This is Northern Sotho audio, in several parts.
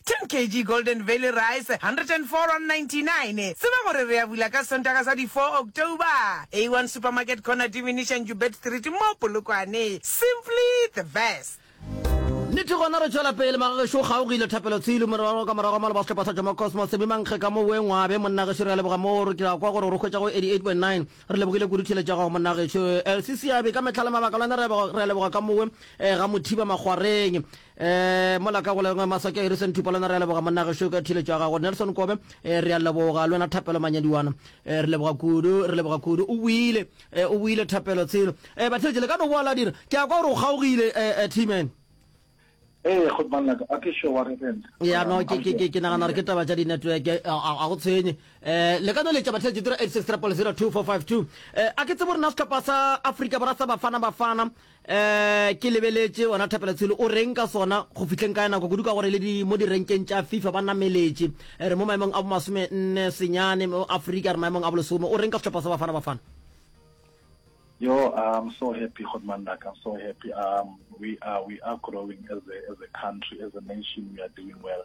10 kg Golden Valley Rice, R104.99. Tseba gore re a bula ka Sontaga sa di 4 October. A1 Supermarket Corner Diminisha Njubet Street mo Polokwane. Simply the best. Nnete gona re tšwela pele. Magagešo o kgaogile, Thapelo Tshilu, morwarragwe ka morago ga maloba sehlopha sa Jomo Cosmos, Semi Mankge ka mo Wee Ngwabe. Monna gešo re a leboga moo re ke ra kwa gore o re hwetša go 88.9. Re lebogile kudu theeletšo ya gago monna gešo. Elsie Seabe ka mehla le mabaka lona re a leboga ka mowe ga Mothiba Makgwareng. Ee, mola ka goleng maswake Harrison Thupalona re a leboga monna gešo ka thiletšo ya gago Nelson Kobe ee, re a leboga le wena Thapelo Manyadiwana ee, re leboga kudu re leboga kudu o buile ee, o buile Thapelo tshelo ee, batheletše le ka no boa la dira ke a kwa gore o kgaogile ee, ee, T-man ee, go manna ka a ke sure wa re rena ya no ke ke ke ke nagana gore ke taba tša di-network eh, a a- a go tshwenye um le ka no letša batheletše tiro 86 0 2452 um a ke tsebo rena setlhopha sa afrika borwa sa bafana bafana Ee, ke lebeletše wena Thapelotshelo. O reng ka sona? Go fihleng ka nako kudu ka gore le di mo direnkeng tša FIFA ba nameletše. Re mo maemong a bomasome nne senyane mo Afrika, re maemong a bolesome. O reng ka sehlopha sa Bafana Bafana? Yo, I'm so happy Kgodu Mandaka, I'm so happy. Um, we are, we are growing as a, as a country, as a nation, we are doing well.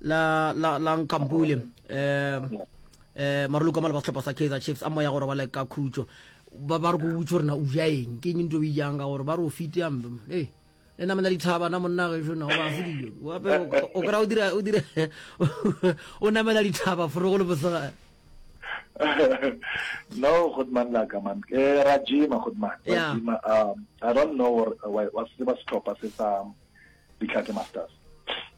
la la la nkampule eh eh marulu ka mala ba setlhopha sa Kaizer Chiefs a moya gore ba le ka khutšo ba ba re go butse rena o ja eng ke eng ntho e jang ka gore ba re o fite ya mbe hey le na mena dithaba na monna ge shona ba se dijo wa pe o kra o dira o dira o na mena dithaba fro go le bosega no good man la ka man ke eh, ra jima good man ra jima um i don't know what what se ba setlhopha se sa ditlhake masters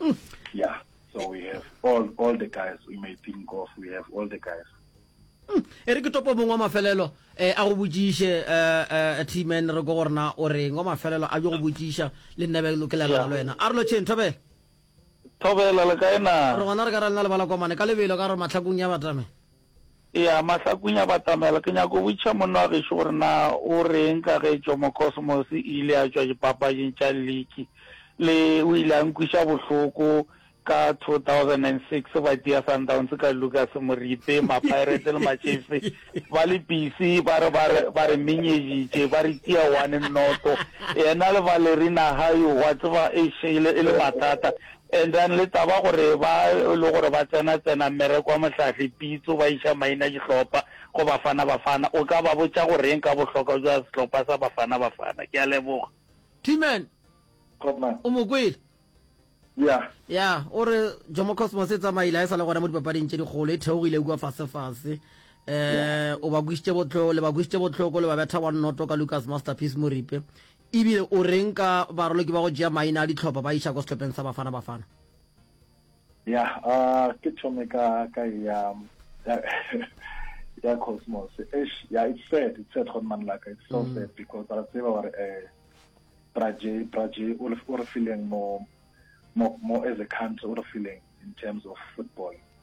Mm. Yeah, so we have all, all the guys we may think of, we have all the guys. Mm. e re ke topo mongwe wa mafelelo eh, a go botsiše eh, eh, tman re ko gorena o reng wa mafelelo a jo go botsiša le nnebe lo ke lebela le wena a re lo tšheng thobela thobela le kae na re gona re ka ra lena lebala komane ka lebelo ka gore matlhakong ya batame Eya, mahlakunya a batamela. Ke nyaka go botšiša monna wa gešo gore na o reng ka ge Jomo Cosmos e ile ya tšwa dipapaging tša liki le o ile a nkwiša bohloko ka 2006 ba tia Sundowns ka Lucas Moripe, Mapirate le Machiefs ba le pisi ba re ba re ba re menyeditše ba re tia one noto. Yena le Valerina Hayo wa tseba e shele e le mathata. And then le taba gore ba e le gore ba tsena tsena mmereko wa mohlahli pitso ba iša maina dihlopha go Bafana Bafana o ka ba botša go reng ka bohlokwa bja sehlopha sa Bafana Bafana? Ke a leboga. T-Man, o mo kwele? Yeah. Ya, o re Jomo Cosmos e tsamaile a e sa le gona mo dipapading tše dikgolo, e theogile kua fasefase. Um o ba kwišitše botlhoko, le ba kwišitše botlhoko, le ba betha one noto ka Lucas Masterpiece Moripe. E bile o reng ka baraloki ba go tšea maina a dihlopha ba iša ko sehlopheng sa Bafana Bafana? Yah, ke thome ka ka ya ya Cosmos. Eish, yeah, it's sad, it's sad gone man laka. It's so mm. sad because ra tseba gore eh Praje Praje o re feeling mo mo mo as a country o re feeling in terms of football.